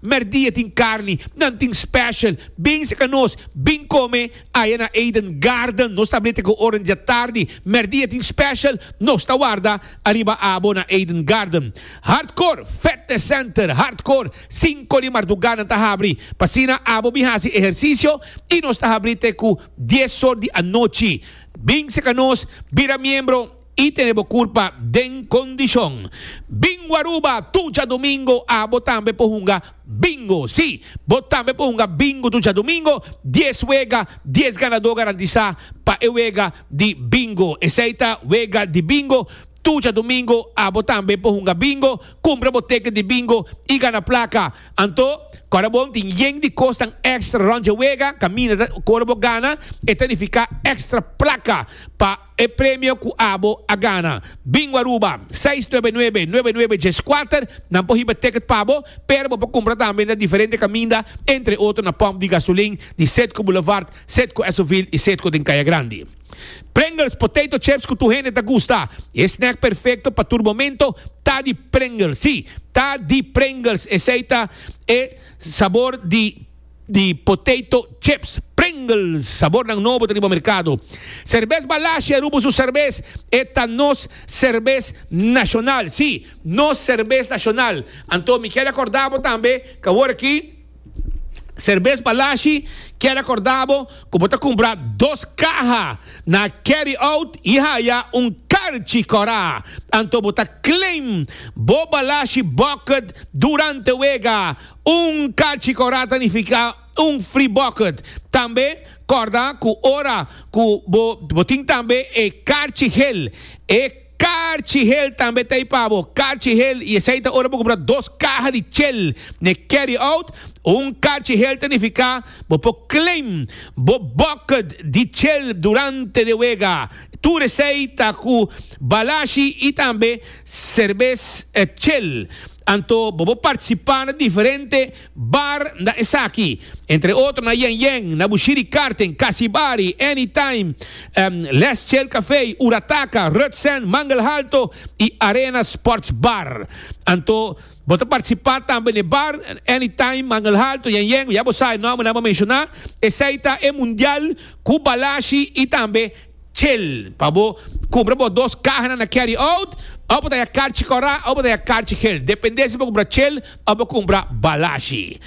Merdia tin carni, nan tin special. Bens a ca nos, bin come aya na Eden Garden. Nos ta blete cu ora dja tardi. Merdia tin special, nos ta warda ariba abo na Eden Garden. Hardcore Fetness Center, Hardcore, cinco di marduga nan ta habri. P'asina abo bin haci ehercicio y nos ta habri te cu dies or di anochi. Bens a ca nos, bira miembro. I tene bo curpa den condicion. Bingo Aruba tucha domingo a bo tambe por hunga Bingo. Si, bo tambe por hunga Bingo tucha domingo, dies wega, dies ganador garantisa pa e wega di Bingo. Esey ta wega di Bingo. Tucha domingo a bo tambe por hunga Bingo, cumpra bo ticket di Bingo y gana placa. Anto, ora bon tin yen di cosnan extra rond dje wega, caminda ta cor bo gana, e ta nifica extra placa pa. E premio cu abo a gana. Bingo Aruba, seis nuebe nuebe, nuebe nuebe dies kuater, nan por hiba ticket pa bo, pero bo por cumpra tambe na diferente caminda, entre otro na pump di gasolin di Cedco Boulevard, Cedco Esoville y Cedco den Caya Grandi. Pringles potato chips cu tur hende ta gusta. E snack perfecto pa tur momento ta di Pringles. Sí, ta di Pringles, esey ta e sabor di. di potato chips Pringles sabornan nobo ta riba merkado. Serbes Balashi a rubo su serbes, e ta nos serbes nashonal, si, nos serbes nashonal. Anto mi kier akorda bo tambe ku awor aki Serbes Balashi kier akorda bo ku bo ta kumpra dos kaha na Carry Out i haya un karchi kòrá. Anto bo ta claim bo Balashi bucket durante wega. Un kachi kòrda ta nifiká un free bucket. Tambe kòrda ku ora ku bo bo tin tambe e karchi hel. E karchi hel tambe ta ei pa bo. Karchi hel i esei ta ora bo kumpra dos kaha di chel n'e carry out. Un karchi hel ta nifiká bo por claim bo bucket di chel durante de wega. Tur esei ta ku balashi i tambe Serbes e chel. Anto bo por participa na diferente bar na esaki. Entre otro na Yen Yen, na Bushiri Karten, Kasi Bari, Any Time, Les Chel Cafe, Urataka, Rutsen, Mangelhalto y Arena Sports Bar. Anto bo ta participa tambe n'e bar, Any Time, Mangelhalto, Yen Yen, ya bo sabe nombernan bo menciona. Esey ta e Mundial cu Balashi y tambe. Chel, pa bo cumpra bo dos cahanan na carry out, of bo ta ya carchi cora of bo ta ya carchi gel, depende si bo cumpra chel of bo cumpra balashi.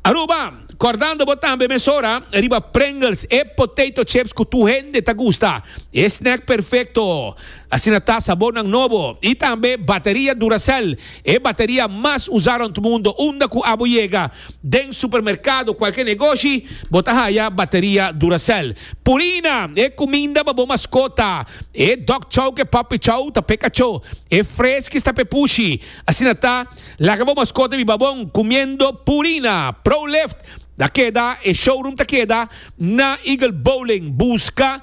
Aruba, cordando bo tambe mesora riba Pringles, e potato chips cu tur hende ta gusta, e snack perfecto, asina ta sabornan nobo, y tambe bateria Duracell, e bateria mas usa rond mundo, unda cu abo yega. Den supermerkado kualke negoshi bo ta haya bateria Duracell, Purina, e kuminda pa bo maskota, e dog chow ke papi chow ta pe kachó, e freskis ta pe pushi. Asina ta, laga bo maskota biba bon kumiendo Purina. Prolift ta keda, e showroom ta keda na Eagle Bowling. Buska.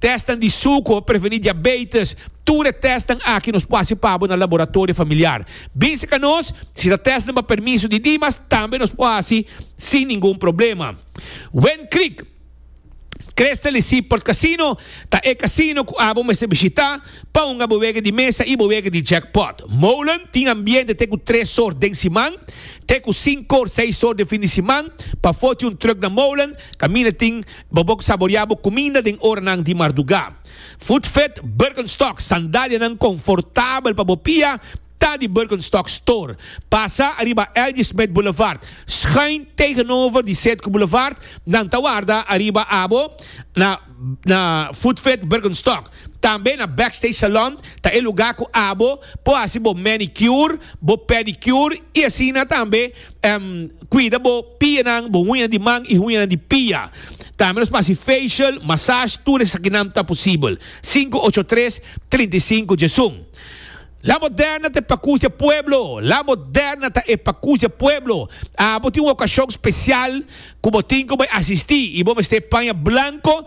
Tèstnan di suko, prevení diabeites, tur e tèstnan aki nos por hasi pa bo na laboratorio familiar. Binse ka nos, si ta tèstnan pa permiso di Dimas, tambe nos por hasi sin ningun problema. Wen Creek Crystal di Seaport Casino ta e casino cu abo mester bishita pa hunga bo wega di mesa y bo wega di jackpot. Molen tin ambiente te cu tres sor den siman, te cu cinco or seis sor den fin di siman. Pa foti un truck na Molen, caminda tin Bo bok saborea bo kuminda den oranan di mardugá. Footfit Birkenstock, sandalianan konfortabel pa bo pia, ta di Birkenstock Store. Pasa ariba L.J. Smith Boulevard, schuin tegenover di Setco Boulevard, nan ta warda ariba abo na na Footfit Birkenstock. Tambe na Backstage Salon ta e lugá ku abo por hasi bo manicure, bo pedicure i asina tambe. Cuida bo pianan, bo huñanan di man y huñanan di pia. Tambe nos p'haci facial, massage, tur esakinan ta posibel. Sinku ocho tres, trinta i sinku dje sun. La moderna ta e pakus dje pueblo! La moderna ta e pakus dje pueblo! Abo tin un ocasion special cu bo tin cu bay asisti y bo mester paña blanco.